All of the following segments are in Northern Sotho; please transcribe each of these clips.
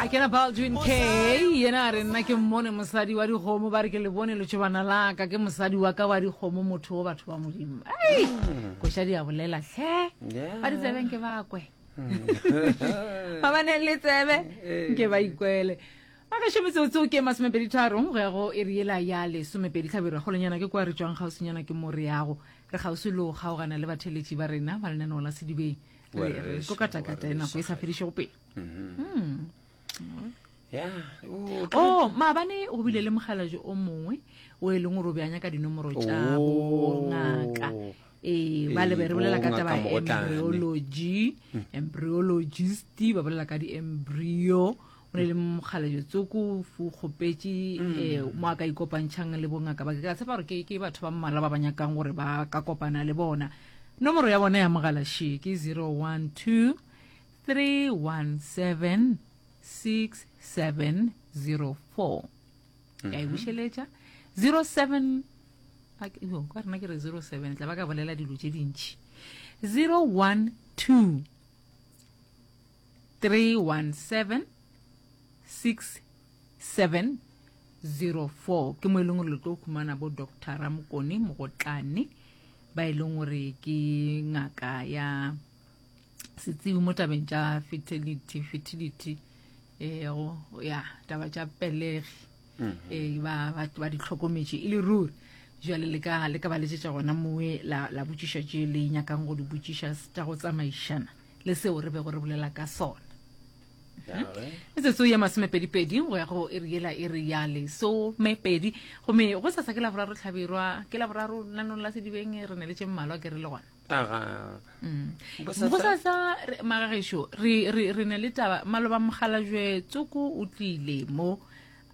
a kena baldwin k yena a re nna ke mmone mosadi wa dikgomo ba re ke le bone letšobana laka ke mosadi wa ka wa dikgomo motho o batho ba modimo ei koša di a bolela tlhe ba ditsebeng ke bakwe ba ba neng le tsebe nke ba ikwele ba ka šometso tseo ke masomepedi tharong go ya go e re ela ya lesomepedi tlhabero golenyana ke kwa re tswang kgauswinyana ke mo re yago re kgauswi le go kgaogana le batheletši ba rena ba lenaneo la sedibeng ko katakata e nako e sa fedišego pele mm-hmm. hmm. o oh, maabane go bile le mogalajo o mongwe o e leng gore o beanya ka dinomoro tša oh. ngaka ee ba lebe re bolela ka taba embryology mm. embryologist ba bolela ka di-embryo go ne le mokgalejetsoko o kgopetše um mm. mo a ka ikopantšhang le bongaka ba ke ka tshepa gore ke batho ba mmala ba ba nyakang gore ba ka kopana le bona nomoro ya bona ya mogalaše ke 012 317 6704 ka e bušeletša 07 ka rena ke re 07 tla ba ka bolela dilo tše dintšhi 012 3176704 ke mo e leng gore le tlo humana bo doctor ramokone mogotlane ba e leng gore ke ngaka ya setsibi mo tabeng tša fertility fertility eh, ya taba tša pelegi mm-hmm. eh, ba, ba, ba di tlhokometše e le ruri jale le ka le ka ba letsetša gona mowe la, la botšiša tše le nyakang go di botšiša tša go tsamaišana le seo re bego re bolela ka sona. metsotso ya masomepedipedi go ya go iri yela e re ya lesomepedi gomme go sasa ke la boraro tlhabirwa ke la boraro lanong la sedibeng re ne le tše mmalwa ke re le gona mm. go sasa magagešo re ne le taba maloba mogalajwe tsoko o tlile mo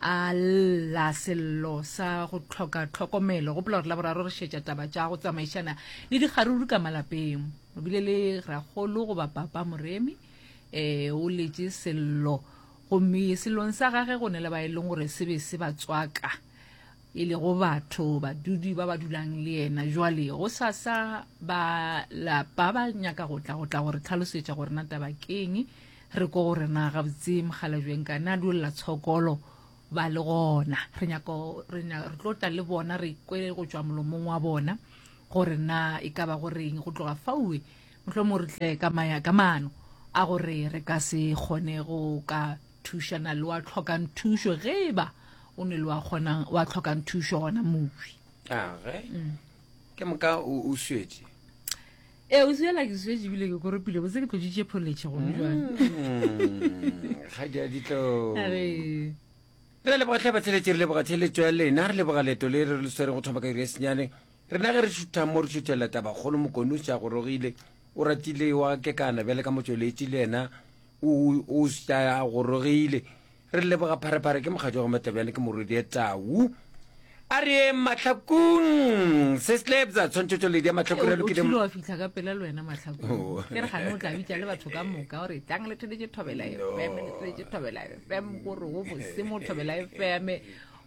a lla sello sa go tlhoka tlhokomelo gopola gore la boraro re šetša taba tša go tsamaišana le dikgaruru ka malapeng o bile le ragolo goba papa moremi um o letše sello gomme selong sa gage go ne le ba e leng gore se be se ba tswaka e lego batho badudi ba ba dulang le yena jwale go sasa ba lapa ba nyaka go tla go tla gore tlhalosetša gore na taba keng Re ko gore na gabotse Mogalajweng ka na duelela tshokolo ba le gona. Re nyako re nya re tlo tla le bona re kwe go tswa molomong wa bona gore na e ka ba go reng go tloga faue mohlo mo re tle ka maya ka mano a gore re ka se gone go ka thusha na le wa tlhokang thusho ge ba o ne le wa kgonang wa tlhokang thusho gona mowi. Age. Ke moka o o swetše. ee o sela ke swetše ebile ke koropile botse ke tloditše pholetšhe gone jwale ga di a ditlo Are. re leboga tlhe batheletše re leboga theletšo ya lena re leboga leto le re le swere go thoma ka iri ya senyane rena ge re šutha mo re šuthela tabakgolo mokone o se a gorogile o ratile wa kekana bjale ka motsweletši le yena o o se a gorogile Re leboga Pharephare ke mokgatšwa go Matlabjane ke Morodie Tau. A re yeng mahlakung se slebza tshwantshetso le dia mahlakong a lokile wa fihla ka pela le wena mahlakong oh. ke re gane o tla bitša le batho ka moka gore tlang le thole thobela fm le thole thobela fm gore o bose mo thobela fm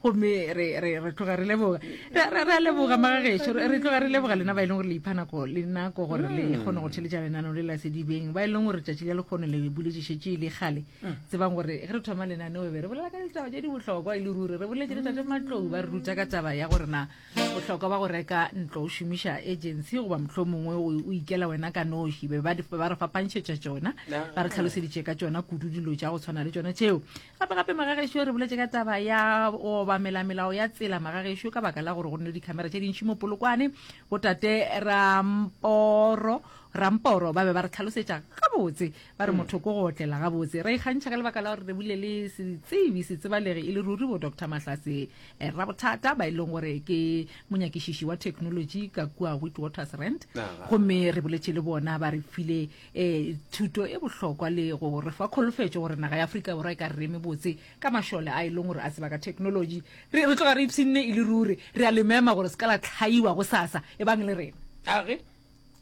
gomme re re re tloga re leboga re re re a leboga magageso re re tloga re leboga lena ba e leng gore le ipha nako le nako gore le Mm. kgone go theletša lenaneo le la sedibeng ba e leng gore tšatši le lekgono le buletšešetše le kgale Mm. tsebang gore ge re thoma lenaneo be re bolela ka ditaba tše di bohlokwa e le ruri re boletše le tate matlou ba re ruta ka taba ya gore na bohlokwa ba go reka ntlo o šomiša agency goba mohlho mongwe o o ikela wena ka noši be ba di- ba re fapantšhetša tšona ba re tlhaloseditše ka tšona kudu dilo tša go tshwana le tšona tšeo Gape-gape magagešo re boletše ka taba ya go obamela melao ya tsela magagešo ka baka la gore go nne le dikhamera tše dintši mo polokwane. Botate Ramporo Ramporo ba be ba re tlhalosetša gabotse ba re motho ko go otlela gabotse. Ra ikgantšha ka lebaka la gore re bule le setsebi setsebalegi e le ruri bo Doctor Mahlase eh, Rabothata ba e leng gore ke monyakišiši wa technology ka kua Witwatersrand Aha. gomme re boletše le bona ba re file e thuto e bohlokwa le go re fa kholofetšo gore naga ya aforika borwa e ka reme botse ka mašole a e leng gore a tseba ka technology re tloga re ipshinne e le ruri re a le mema gore se ka la tlhaiwa go sasa e bang le rena age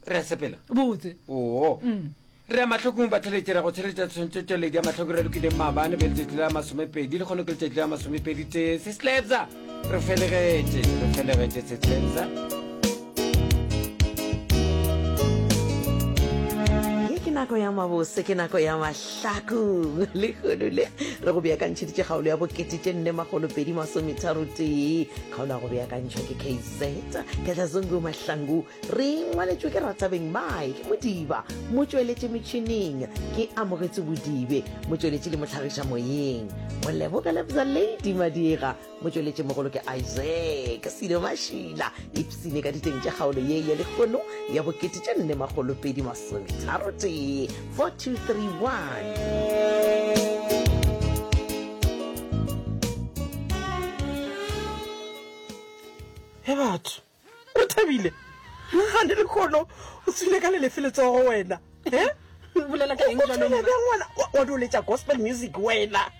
re a sepela botse oo mm. re a matlhokong ba tlheletsera go tsheletsa tshwantsho tšweledi ya matlhoko re lokileng maabane be letšatši la masomepedi le kgone ke letšatši la masomepedi tee se slabsa Re felegetše, re felegetše Tshetshentsa. Ye ke nako ya mabose, ke nako ya mahlakong. Lehono le re go beakantšheditše kgaolo ya bokete tše nne makgolo pedi masometharo tee. Kgaolo ya go beakantšhwa ke KZ Katlazungu Mahlangu. Re ngwaletšwe ke Ratsabeng Mike Modiba, motšweletši metšhining ke Amogetso Bodibe, motšweletši le motlhagiša moyeng Moleboge Lebza Lady Madiega, motšweletši mogolo ke Isaac Silo Mašila, ipsene ka diteng tša kgaolo ye ya lekgono ya bokete tša nne makgolo pedi masometharo tee 4231. Ge batho O thabile? Ga ne lekgono o tswile ka lelefe letsogo wena. Eh? O bolela ka eng jalo? O tshwenya bjang ngwana? Wa doletša gospel music wena.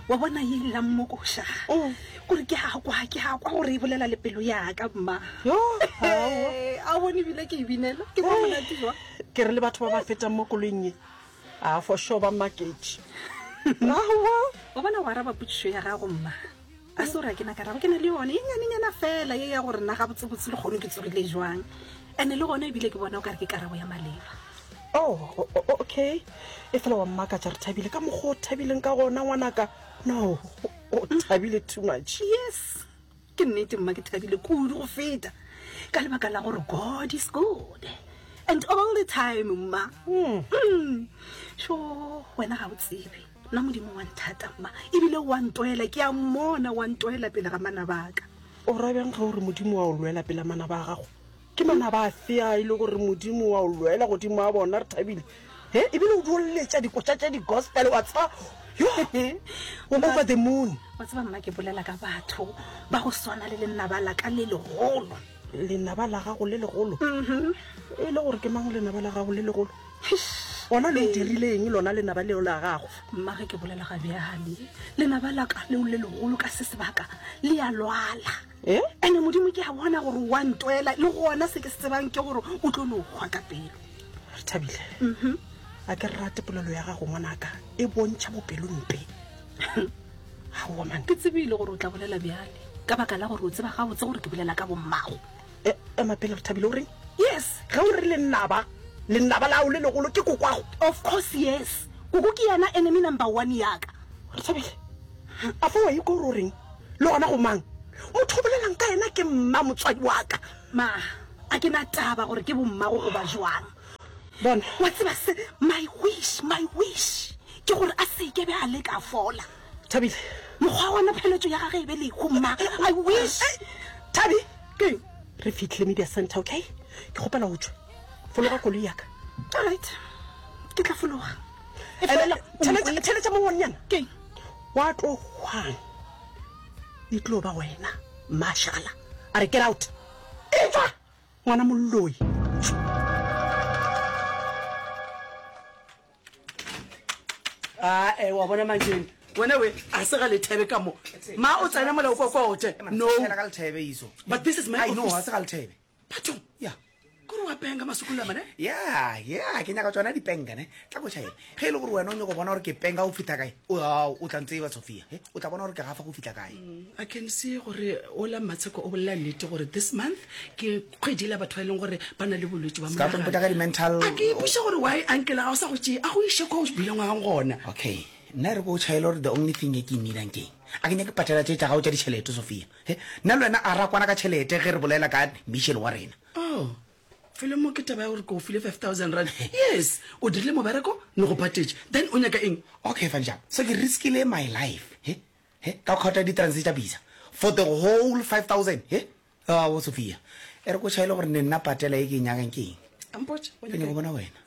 Wa bona e ile ya mmokoša. Oh. Gore ke a kwa, ke a kwa gore e bolela le pelo ya ka mma. Yo, a bone bile ke e binela. Ke kwa monate jwa. Ke re le batho ba ba fetang mo koloing e. A for sure ba maketše. Wa bona wa araba putsišo ya gago mma. a se gore a ke na karabo ke na le yone e nyanenyana fela ye ya gore nna ga botsebotse le kgone ke tsogile jwang ande le gone ebile ke bona o kare ke karabo ya maleba oh okay e fela wa mmaka tša re thabile ka mokgwa o thabileng ka gona ngwanaka no o thabile too much yes ke nnete mma ke thabile kudu go feta ka lebaka la gore god is good and all the time mma hmm. Hmm. sho wena ga o tsebe Na Modimo wa nthata, mma, ebile o a ntoela. Ke a mmona o a ntoela pele ga manabaka. O ra bjang ge o re Modimo wa o lwela pela manaba a gago? Ke manaba afe a e le gore Modimo wa o lwela godimo a bona? Re thabile. He, ebile o duoletša dikotša tša digospele, wa tseba, yo, o over the moon. Wa tseba, mma, ke bolela ka batho ba go swana le lenaba la ka le legolo. lenaba la gago le legolo mm-hmm. e le gore ke mang lenaba la gago le legolo gona le dirileng lona lenaba leo la gago mmage ke bolela ga bjale lenaba la ka leo le legolo ka se sebaka le ya lwala eh? ande modimo ke a bona gore wa ntwela le gona se ke se tsebang ke gore o tlo no kgwa ka pelo re thabile mm-hmm. a ke re rate polelo ya gago ngwanaka e bontšha bopelompe aowa man ke tsebile gore o tla bolela bjale ka baka la gore o tseba gabotse gore ke bolela ka bommago e, ema pele re thabile o reng yes ge o re lennaba lennaba lao le legolo ke kokwago of course yes koko ke yena enemy number one yaka re thabile a fa wa ikwa gore o reng le gona go mang motho o bolelang ka yena ke mma motswadi waka ma a ke na taba gore ke bommago goba jwang bona wa tseba se my wish my wish ke gore a se ke be a le ka fola thabile mokgwa wa mapheletso ya gage e be le humma i wish thabi ke re fitlhile media center okay ke gopela go tswa fologa koloi yaka all right ke tla fologa e fela tšhelete mongwannyana ke wa tlo hwang e tlo ba wena mashala a re get out e tswa ngwana molloi ae wa bona manjeng wena we a se ga lethebe ka mo ma o tsena molao kwa kwa ote no but this is my office bathong ya kore wa penga masukula mane ya ya ke nyaka tsona dipenka ne tla ko chaena ge e le gore wena o nyako bona gore ke penga go fitha kae o tla ntseba sophia he o tla bona gore ke gafa go fitha kae i can see gore ola matsheko o bolela nnete gore this month ke kgwedi la batho ba e leng gore ba na le bolwetse ba monaga ka di-mental a ke ipuša gore why ankela ga o sa go tšee a go iše kwa o bileng wa gona okay nna re ko tšhaele gore the only thing e ke ineedang keng a ke nyake patela tše tša gago tša ditšhelete sophia he nna le wena a ra kwana ka tšhelete ge re bolela ka mission wa rena oh felo mo ke taba ya gore ke o file five thousand rand yes o dirile mobereko ne go patetse then o nyaka eng okay fa njang so ke riskile my life he he ka kgotha di-transe tša bisa for the whole five thousand he ao sophia e re ko chaele gore ne nna patela e ke e nyakang ke eng ke ne go bona wena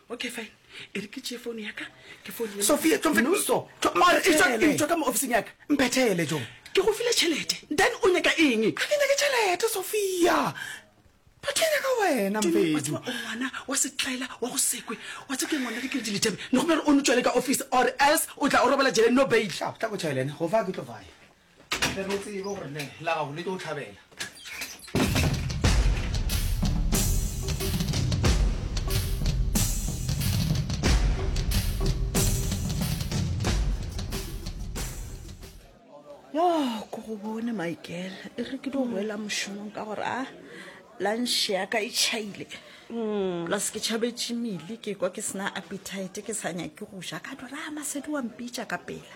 okay fine e re ke tšee founu yaka ke founsophia tsoeetswa ka mo officing yaka mphethele jo ke go file tšhelete then o nyaka eng a ke nyake tšhelete sophia batho nyaka wena mbedu ngwana wa setlaela wa go sekwe wa tsa ke ngwana ke kere diliteme ne go bjare o no tšwele ka office or else o tla o robela jeleng no bail tla go tšhelene go fa ke tlo faya tle re tsebe gore ne la gago le tlo o tlhabela yo ko go bone michael e re ke di boela mošomong ka gore a lanše ya ka e tšhaile plus ke tšhabetše mele ke kwa ke sena appetite ke sa nyake go ja ka dora masedi wa mpitša ka pela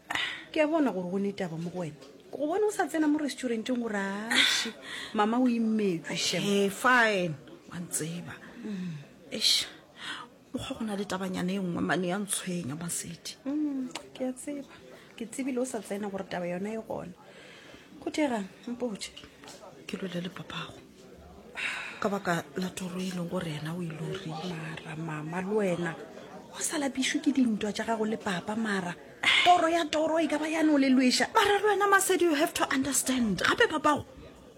ke a bona gore go ne taba mo go wena go bona o sa tsena mo restauranteng gore ashe mama o imetswe shem e fine wa ntseba eish mokgwa go na le tabanyana e nngwe mane ya ntshwenya masedi Mm, ke a tseba ke tsebile o sa tsena gore taba yona e gona go thegang mpotse ke lole le papago ka baka la toro e leng gore yena o ilori mara mama le wena o sa lapišwe ke dintwa tša gago le papa mara toro ya toro e ka ba yane o le lweša mara le wena masedi you have to understand gape papago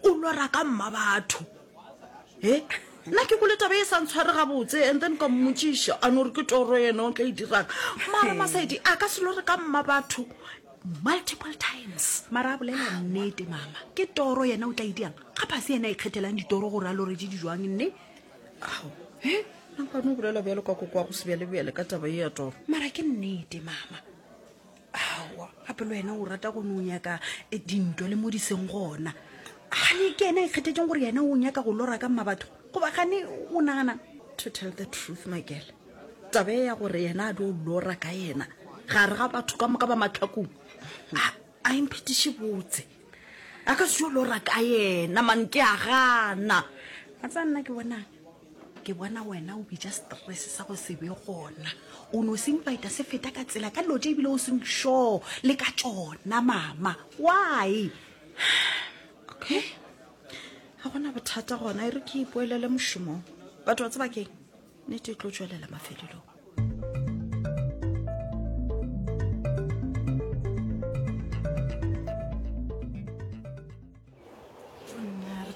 o lora ka mma batho e nna ke kole taba e sa ntshware gabotse and then ka mmotsiša a no re ke toro yena o tla e dirang mara masedi a ka se lore ka mma batho multiple times mara a bolela nnete mama ke toro yena o tla idiang ga phase yena e kgethelang ditoro gore a lore di dijwang nne ao e nankwane o bolela bjalo ka kokoa go sebjalebjale ka taba e ya toro mara ke nnete mama awa gape le wena o rata go ne o nyaka eh, dintwa le mo di seng gona gane ke ena e kgethetseng gore yena o nyaka go lora ka mma batho goba gane o nagana to tell the truth makele Tabe ya gore yena a dio lora ka yena gare ga batho ka moka ba matlhakong a imphetiše botse a ka seo lora ka yena man ke a gana a tsa nna ke bonang ke bona wena o bitša stress sa go se be gona o no se invita se feta ka tsela ka dilo tše ebile o seng sure le ka tšona mama why okay ga gona bothata gona e re ke ipoelele mošomong batho ba tsebakeng nete e tlo tšwelela mafelelong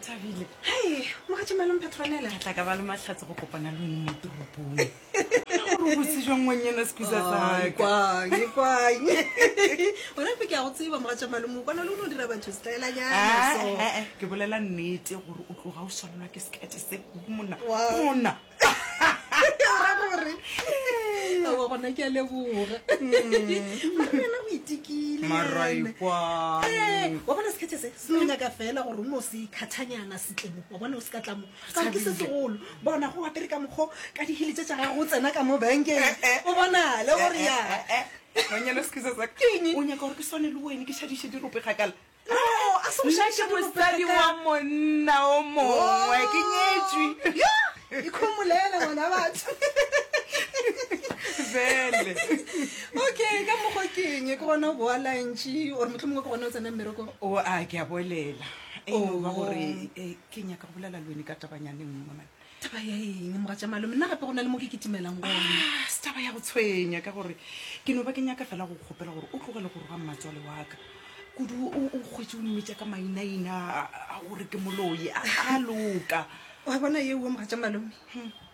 thabile hei mogatšemalong petronele ga tla ka ba le matlhatse go kopana le one mo toropong gore botse jwang ngwanyana sekusaaone fe ke ya go tseba mogatšemalong o kwana le o ne o dira batho setaelanyana ke bolela nnete gore o tloga o swanelwa ke sekete se monna monna ra gore awa gona ke a leboga marena o itikile maraikwa wa bona sekhethe se se nyaka fela gore o no se khathanyana setlemo wa bona o se ka tlamo ka ke se segolo bona go apere ka mokgo ka dihele tse tsa gago o tsena ka mo bankeng o bona le gore ya ganyana sekhethe sa keng o nyaka gore ke swane le wene ke šadiše dirope kgakala nna ke mosadi wa monna o mongwe ke nyetsweikhomolele ngwana batho bele okay ka mokgwa ke eng ke gona go boa lantši ore motlho mongwe ke gona o tsena mmereko o a ke a bolela ba gore ke nyaka go bolela lone ka tabanyane nngwe taba ya eng moga tša malome nna gape go na le mo ke ketimelang gone Ah, se taba ya go tshwenya ka gore ke no ba ke nyaka fela go kgopela gore o tlogele go roga mmatswale wa ka kudu o o kgwetse o mmitša ka mainaina a- a gore ke moloi a a loka wa bona ye uwe moga tša malome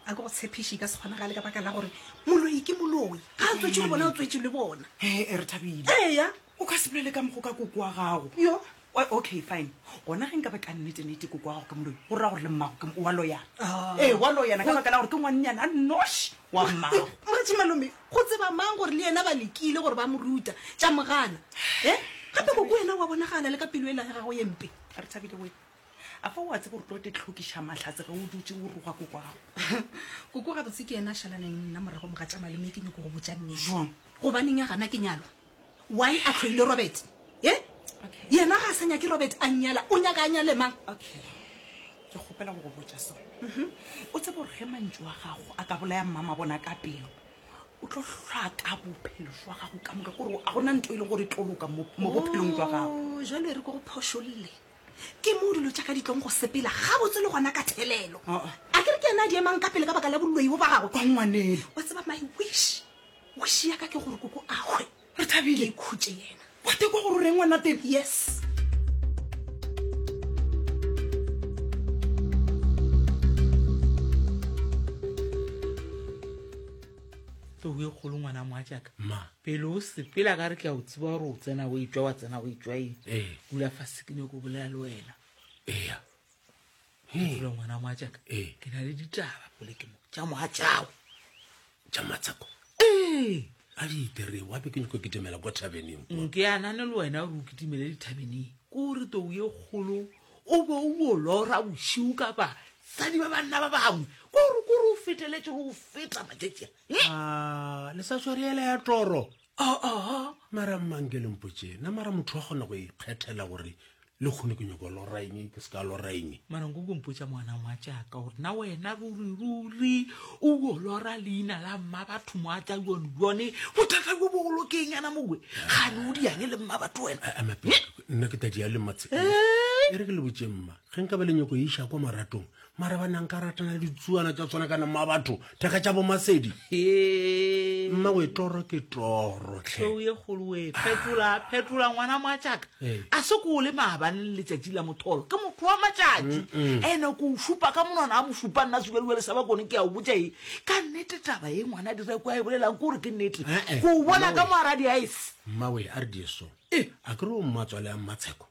a ke go tshepiše ka se kgonagale ka baka la gore moloi ke moloi ga a tswetše le bona o tswetše le bona He, e re thabile eya o ka se bolele ka mogo ka koko wa gago yo Ok, fine. Gona ge nka ba ka nnete-nnete koko wa gago ke moloi, go ra gore le mmago ke wa loyana. Ee, wa loyana ka baka la gore ke ngwannyana a nnoši wa mmago. Moretši malome, go tseba mang gore le yena ba lekile gore ba mo ruta, tša mo gana. He? Gape koko wena wa bonagala le ka pelo ela ya gago ye mpe. A re Thabile we, a fa wa tseba gore tlo te tlhokiša mahlatse ge o dutše o roga koko wa gago? Koko gabotse ke yena a šalaneng le nna morago mo ga tša malome, ke nyoko go botša nnete. Bjang? Gobaneng a gana ke nyalwa? Why a tlhoile Robert? Ye? Okay. Yena ga a sa nyake Robert a nyala, o nyaka a nyale mang? Okay. Ke kgopela go go botša sone. Mhm. O tsebe gore ge mantšu a gago a ka bolaya mmama bona ka pelo. O tlo hlaka bophelo jwa gago ka moka gore a gona nto e le gore tlo loka mo mo bophelong jwa gago. Oh, jalo e re ko go phošolle. Ke mo dilo tša ka di tlong go sepela ga botse le gona ka thelelo. Oh, oh. A ke re ke yena a di emang ka pele ka baka la boloi bo ba gago. Kwa ngwanelo. Wa tseba my wish. Wish ya ka ke gore koko a hwe. Re thabile. Ke khutše yena. Wa tekwa gore o reng ngwana teng? Yes. tlou e kgolo ngwana moa jaaka ma pele o sepela ka re ke a o tsiba gore o tsena o etswa wa tsena o etswa eng Ee. kula fa sekine ko bolela le wena eya Ee. ngwana moatšaka Ee. ke na le ditaba pole ke mo tša moatšago tša matsako ee a di itere wa be ke nyako ke demela kwa thabeneng nke a nane le wena gore o kitimele dithabeneng ke gore tou ye kgolo o be o bo lora bošiu ka basadi ba banna ba bangwe ke gore kore o feteletse go feta matšatšia Ah, le sa tshware ele ya toro aa mara mmang ke lempotše na mara motho wa kgona go ikgethela gore le kgone ke nyoko loraeng ke se ka loraeng mara nko kompotša moana moa jaaka gore na wena ruriruri o o lora leina la mma batho moa tla yone yone bothata jo bogolo ke eng yana mowe gane o diang le mma batho wena nna ke tadi ya le matse e re ke le botše mma ge nka ba le nyoko e iša kwa maratong mara ba nang ka ratana le ditsuana tsa tshwana kana mma batho thekga tša bomasedi mma o e toro ke toro tlheo ye kgoloe phetola phetola ngwana moatšaka a se ko o le maabane le letšatši la motholo ke motho wa matšatši ene ko o šupa ka monwana a mo šupa nna sukadiwa le saba kone ke ya o botša e ka nnete taba ye ngwana dira ko a e bolelang ke gore ke nnete ko o bona ka moaradi a ese mmawe a re dieso e a kere o mmatswale a mmatsheko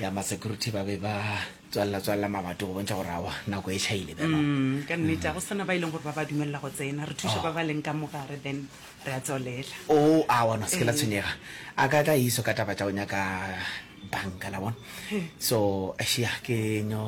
ya masecurity ba be ba tswalela tswalela mabato go bontšha gore awa nako e tšhaile bjalo Mm, ka nnete a go sana ba e leng gore ba ba dumelela go tsena re thuše ba ba leng ka mogare then re a tswalela o a bona se ke la tshwenyega a ka tla iso ka taba tša go nyaka banka la bona so ashia ke nyo